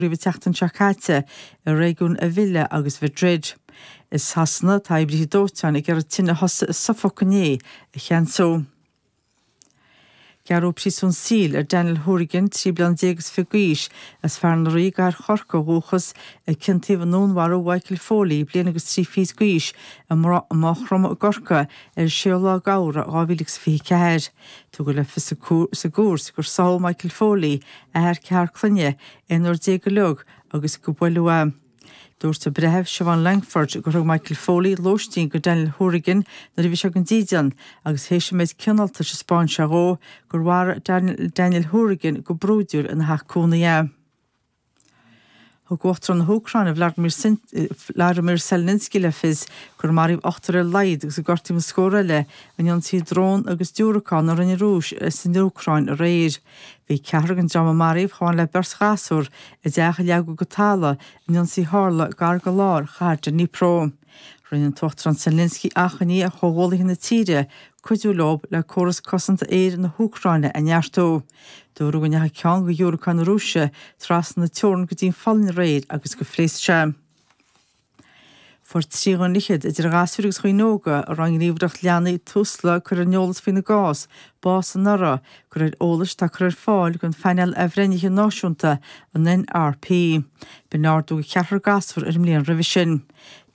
roimh an tseachtain seo caite i réigiún Avila agus Mhadrid. I Sasana, tá oibrithe dóiteáin ag iarraidh tine a thosaigh i Suffolk inné a cheansú. Gearradh príosún saoil ar Daniel Hourigan, 13 bliana déag is fiche d'aois, as Fearann Rí i gCathair Chorcaí ó dhúchas, a ciontaíodh i ndúnmharú Mhichael Foley, bliain agus trí fichid d'aois, i Maigh Chromtha i gCorcaigh ar 6ú lá Feabhra 2024. Tugadh le fios sa gcúirt gur shamhail Michael Foley, athair ceathrar clainne, ina fhear deas go leor agus go b'uile. Dúirt an breitheamh, Siobhan Lankford, gur thug Michael Foley lóistín go Daniel Hourigan nuair a bhí sé gan dídean agus théis an méid cineáltais a spáin sé dhó, gur mharaigh Daniel Hourigan go brúidiúil ina theach cónaí é. Thug Uachtarán na hÚcráine, Volodymyr Zelensky, le fios gur maraíodh ochtar ar laghad agus gur gortaíodh na scórtha eile in ionsaí drón agus diúracán a rinne an Rúis san Úcráin aréir. Bhí ceathrar gon dream a maraíodh chomh maith le beirt ghasúr i dteach a leagadh go talamh in ionsaí tharla gar go lár chathair Dnipro. Rinne an tUachtarán Zelensky achainí ar chomhghuaillithe na tíre cuidiú leo le córas cosanta aeir na hÚcráine a neartú. Dúradh go ndeachaigh ceann go dhiúracáin na Rúise trasna na teorann go dtí'n Pholainn aréir agus gur phléasc sé. Fuair trí dhuine fhichead, idir ghasúir agus dhaoine óga, a raibh an ghníomhaireacht leanaí Tusla curtha ar an eolas faoina gcás, bás anuraidh, go réir eolais atá curtha ar fáil ag an bPainéal Athbhreithnithe Náisiúnta, an NRP. B'in ardú go ceathrar gasúr ar an mbliain roimhe sin.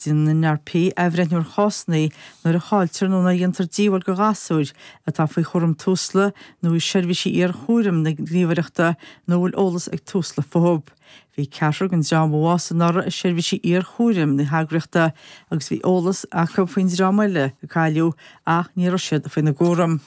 Déanann an NRP athbhreithniú ar chásanna nuair a chailltear nó nuair a dhéantar díobháil do ghasúir atá faoi chúram Tusla nó i seirbhísí iar-chúraim na Gníomhaireachta nó a bhfuil eolas ag Tusla futhu. Bhí ceathrar den dream a bhásaigh anuraidh i seirbhísí iar-chúraim na heagraíochta agus bhí eolas acu faoin dream eile a cailleadh ach ní raibh siad faoina gcúram.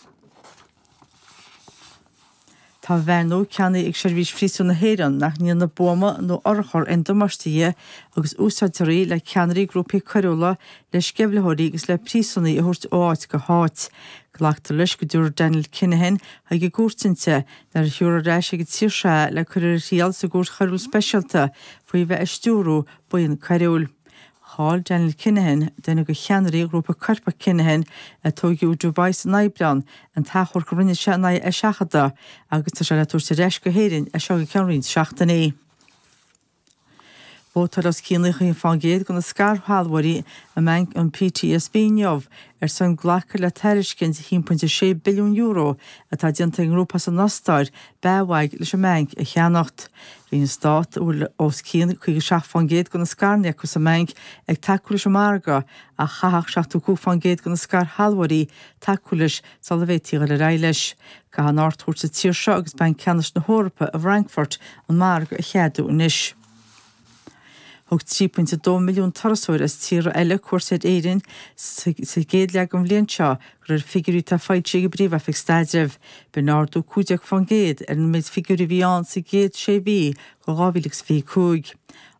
Tá veain nua ceannaithe ag Seirbhís Phríosúin na hÉireann nach ndéanann buama nó urchar aon damáiste di agus úsáidtear í le ceannairí grúpaí coiriúla, le sceimhlitheoirí agus le príosúnaigh a thabhairt ó áit go háit. Glactar leis go dtiúrfar Daniel Kinahan chuig an gcúirt inti nuair a thiúrfar ar ais ag an tír seo é a le cur ar a thriail sa gcúirt choiriúil speisialta faoi bheith ag stiúradh buíon coiriúil. Chaill Daniel Kinahan duine go ceannairí ghrúpa Coirpeach Kinahan a tóigeadh i Dubai san Aibreán, an t-achomharc a rinne sé in aghaidh a sheachadta agus tá sé le tabhairt ar ais go hÉirinn as seo go ceann roinnt seachtainí. Vótáil os cionn 90% de na scairshealbhóirí i mBanc an PTSB inniu ar son glacadh le tairiscint €1.6 billiún atá déanta ag an ngrúpa as an Ostáir, BAWAG, leis an mbeainc a cheannacht. Bhí an Stát, a bhfuil os cionn 57 faoin gcéad de na scaireanna acu sa mbeainc, ag tacú leis an margadh, ach chaithfeadh 75 faoin gcéad de na scairshealbhóirí tacú leis sula bhféadfaí dul ar aghaidh leis. Caithfidh an Ard-Chúirt sa tír seo agus Banc Ceannais na hEorpa i bhFrankfurt an margadh a cheadú anois. Thug 3.2 milliún turasóir as tíortha eile cuairt ar Éirinn sa gcéad leath den bhliain seo de réir figiúirí atá foilsithe ag an bPríomh-Oifig Staidrimh. B'in ardú 15% ar an méid figiúirí a bhí ann sa gcéad sé mhí de 2025.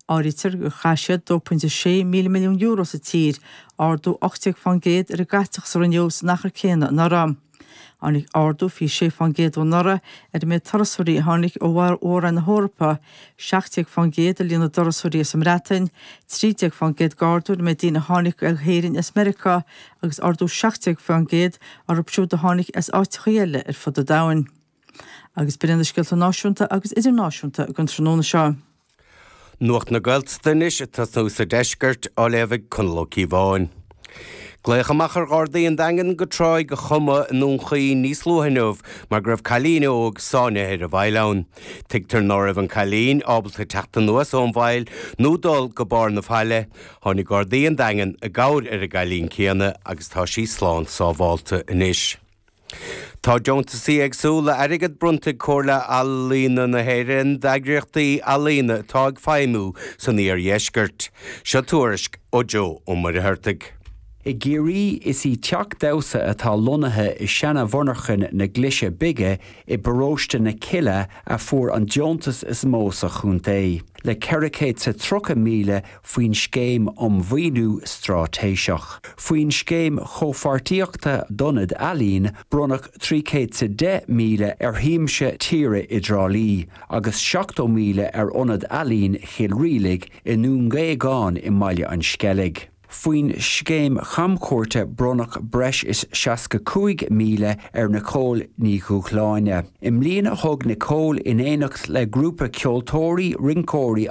Áirítear gur chaith siad €2.6 míle milliún sa tír, ardú 18% ar an gcaiteachas a rinneadh san achar céanna anuraidh. Tháinig ardú 26% ó anuraidh ar an méid turasóirí a tháinig ó Mhór-Roinn na hEorpa, 17% i líon na dturasóirí as an mBreatain, 13% d'ardú ar an méid daoine a tháinig go hÉirinn as Meiriceá agus ardú 17% orthu siúd a tháinig as áiteacha eile ar fud an domhain. Agus b'in na scéalta náisiúnta agus idirnáisiúnta don tráthnóna seo. Nuacht na Gaeltachta anois ag tosnú sa deisceart, á léamh ag Conall Ó Cíobháin. Glaodh amach ar Ghardaí an Daingin go Tráigh an Choma i nDún Chaoin níos luaithe inniu mar go raibh cailín óg sáinnithe ar an bhfaill ann. Tuigtear ná raibh an cailín ábalta teacht anuas ón bhfaill nó dul go barr na faille. Tháinig Gardaí an Daingin i gcabhair ar an gcailín céanna agus tá sí slán sábhálta anois. Tá deontaisí éagsúla airgid bronnta ag Comhairle Ealaíona na hÉireann d'eagraíochtaí ealaíona atá ag feidhmiú san iardheisceart. Seo tuairisc ó Joe Ó Muircheartaigh. I gCiarraí is í Teach Damhsa atá lonnaithe i seana-mhonarchain na Glaise Bige i bparóiste na Cille a fuair an deontas is mó sa chontae, le ceithre céad 's a tríocha míle faoin Scéim um Mhaoiniú Straitéiseach. Faoin Scéim Chomhpháirtíochta d'Ionaid Ealaíon bronnadh trí céad 's a deich míle ar Shiamsa Tíre i dTrá Lí agus seachtó míle ar Ionad Ealaíon Chill Rialaigh i nDún Géagáin i mBaile an Sceilg. Faoin Scéim Chamchuairte bronnadh breis is seasca cúig míle ar Nicole Ní Dhubhshláine. I mbliana thug Nicole, in éineacht le grúpa ceoltóirí, rinceoirí